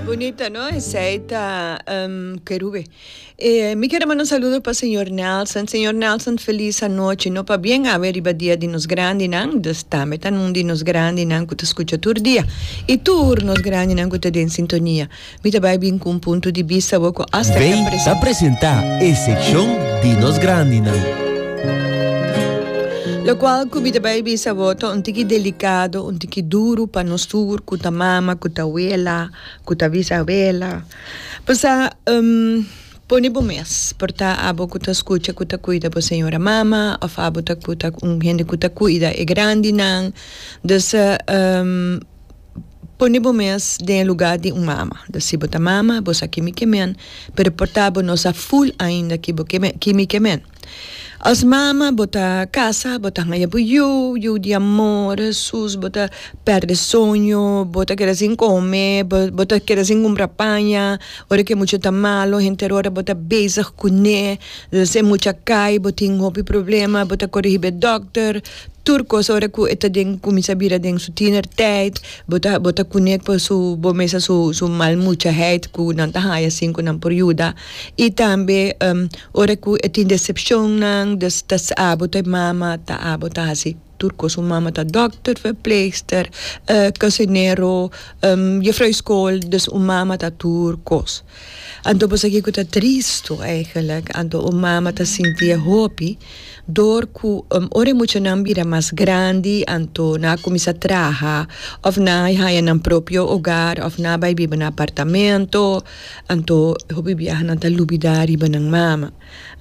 Bunita no esey ta um, kerube. E, mi quiere mandar un saludo pa señor Nelson. Señor Nelson, feliz anoche. No pa bien awe riba dia di nos grandi nan, dus tambe ta nun di nos grandi nan cu ta scucha tur dia. Y tur nos grandi nan cu ta den sintonia. Mi ta bay bin cu un punto di bista bo cu hasta Bay ta presenta. presenta e seccion di nos grandinan. Locual cu mi ta bay bisa bo ta un tiki delicado, un tiki. Ki duru pa nos tur ku ta mama, ku ta wela, ku ta bisawela. Pasa, pone bo mes por ta abo ku ta skucha ku ta kuida bo señora mama òf abo ta ku ta un hende ku ta kuida e grandinan. Dus, pone bo mes den e lugá di un mama. Dus si bo ta mama, bo sa kimi ke men, pero por ta bo no sa ful ainda ki bo ke men, kimi ke men. As mama bo ta casa bo ta haya bo yu yu di amor sus bo ta perde soño bo ta keda sin come bo ta keda sin cumpra paña ora ke mucha ta malo henter ora bo ta bezeg cune esey mucha cay bo tin hopi problema bo ta corigi be doctor tur cos ora cu e ta den cuminsa bira den su tiener tijd bo ta bo ta cune pasobomesa su su mal mucha heid cu nan ta haya sin cu nan por yuda Y tambe ora cu e tin decepcionnan, dus ta sa bo ta e mama, ta abo ta haci tur cos. Un mama ta dokter, verpleegster, cocinero, juffrouw e school, dus un mama ta tur cos. Anto bo sa kico ta tristo eigenlijk, anto un mama ta sinti e hopi door cu ora e muchanan bira mas grandi, anto nan a cuminsa traha of nan a haña nan propio hogar of nan a bay biba na apartamento. Anto e hopi biahanan ta lubidá riba nan mama.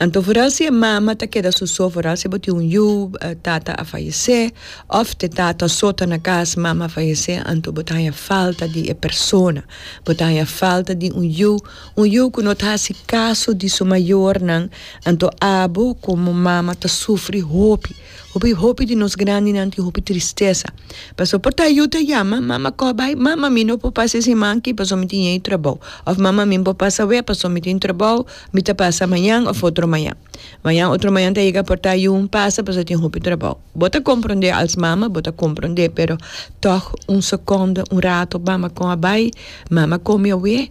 Anto foral si e mama ta keda soso, foral si bo tin un yu, tata a fayesé, òf t'e tata so ta na kas, mama a fayesé, anto bo ta haña falta di e persona. Bo ta haña falta di un yu, un yu ku no ta hasi kaso di su mayornan, anto abo komo mama ta sufri hopi. Hopi hopi di nos grandinan tin hopi tristesa pasobra por ta yu ta yama mama koh bai mama mi no por pasa e siman aki pasobra mi tin e trabou of mama mi no por pasa awea pasobra mi tin trabou mi ta pasa mañan of otro mañan mañan otro mañan ta yega por ta yu pasa pasobra tin hopi trabou bo ta compronde als mama bo ta compronde pero tog un secondo un rato mama koh a bai mama komi awea.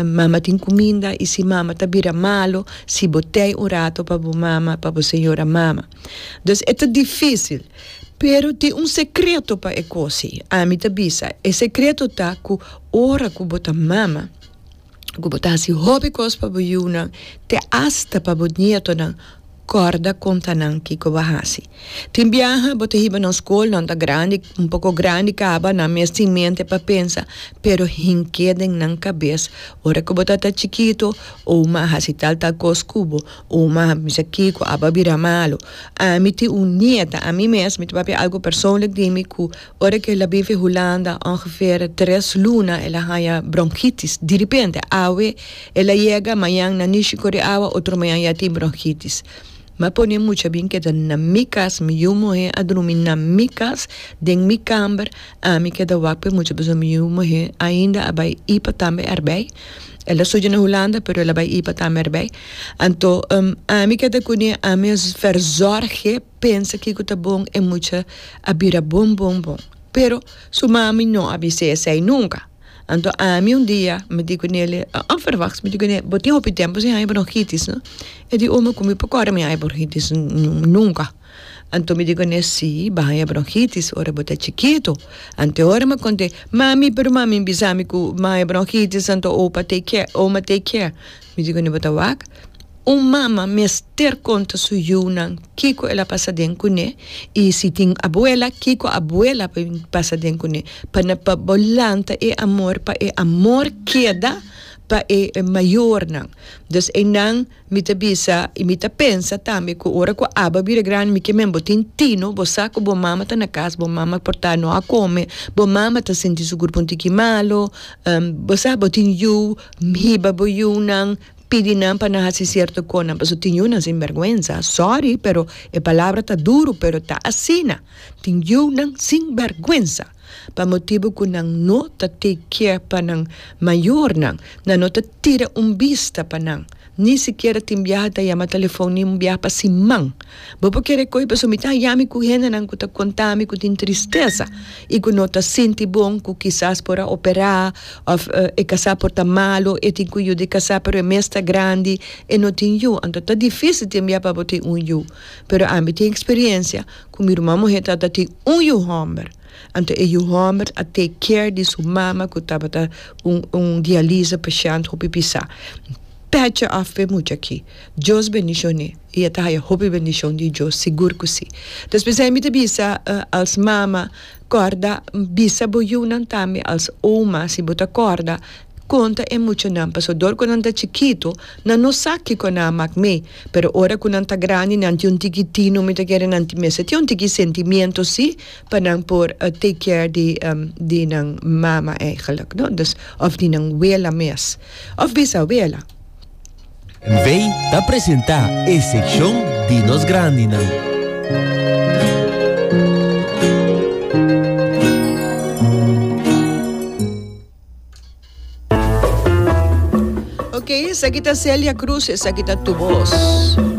Mama tin cuminda y si mama ta bira malo si bo tey un rato pa bo mama, pa bo señora mama. Dus e ta dificil pero tin un secreto pa e cosi. Ami ta bisa e secreto ta cu ora cu bo ta mama, cu bo ta haci hopi cos pa bo yunan te hasta pa bo nietonan. Corda conta nan kico bo a haci. Tin biaha bo ta hiba nos school, nan ta grandi, un poco grandi caba, nan mes tin mente pa pensa, pero hin ke den nan cabes, ora cu bo ta ta chikito, oh ma a haci tal tal cos cu bo, oh ma a bisa kico, aba bira malo. Ami tin un nieta, ami mes, mi ta papia algo persoonlijk di mi cu. Ora ke el a bifi Hulanda ongeveer tres luna el a haña bronkitis. Diripente awe el a yega mañan na Nishi kore awa otro mañan ya tin bronkitis. M'a pone mucha bin keda na mi kas, mi yu muhé a drumi na mi kas den mi kamber, ami keda wak p'e mucha pasobra mi yu muhé ainda a bai ipa tambe erbei. El a studia na Hulanda pero el a bai ipa tambe erbei. Anto ami keda kuné, ami a verzorg'e. pensa kiko ta bon e mucha a bira bon bon bon pero su mami no a bisa esei nunka anto ami un dia mi di ku neli onverwachts mi di ku neli bo tin hopi tempo sin haña bronhitis no e di o mi komo mi por kore mi haña bronhitis nunka anto mi di ku ne si bo a haña bronhitis ora bo ta chikitu anto ora mi a konta e mami pero mami mi bisa mi ku mi haña bronhitis anto opa take care oma take care mi di ku ne bo ta wak Un mama mester konta su yunan kiko el a pasa den kuné i si tin abuela kiko abuela a bin pasa den kuné pa na pa bo lanta e amor pa e amor keda pa e mayornan. Dus einan mi ta bisa i mi ta pensa tambe ku ora ku abo a bira grandi mi ke men bo tin tino bo sa ku bo mama ta na kas bo mama por ta no a kome bo mama ta sinti su kurpu un tiki malo bo sa bo tin yu hiba bo yunan. pidi nan pa nan hasi cierto conan paso tin yunan sin vergüenza sorry pero e palabra ta duro pero ta asina tin yunan sin vergüenza pa motibo cu nan no ta take care pa nan mayornan nan no ta tira un bista pa nan ni sikiera tin biaha ta yama telefon ni un biaha pa siman. Bo por kere koe pasobra mi ta haya mi ku hendenan ku ta konta mi ku tin tristesa i ku no ta sinti bon ku kisas por a operá òf e kasá por ta malu, e tin ku yu di kasá pero e mes ta grandi, e no tin yu. Anto ta difísil tembia pa bo tin un yu. Pero ami tin eksperiencia ku mi ruman muhé tabata tin un yu hòmber. Anto e yu hòmber a take care di su mama ku tabata un un dialyse pashènt hopi pisá. Pèt dje òf p'e mucha aki. Dios bendishoné. i e ta haya hopi bendishon di Dios, sigur ku si. Despues ei mi ta bisa, Als mama, kòrda, bisa bo yunan tambe, als oma, si bo ta kòrda, konta e muchanan, pasobra dor ku nan ta chikitu, nan no sa kiko nan a mak mee, pero ora ku nan ta grandi, nan tin un tiki tino, mi ta kere nan tin mester tin un tiki sentimiento si, pa nan por take care di di nan mama, èigelik, no? Òf di nan wela mes, òf bisa wela. NV, Ta presentá e sekshon di nos grandinan. Oke, esaki ta Celia Cruz, esaki ta Tu Bos.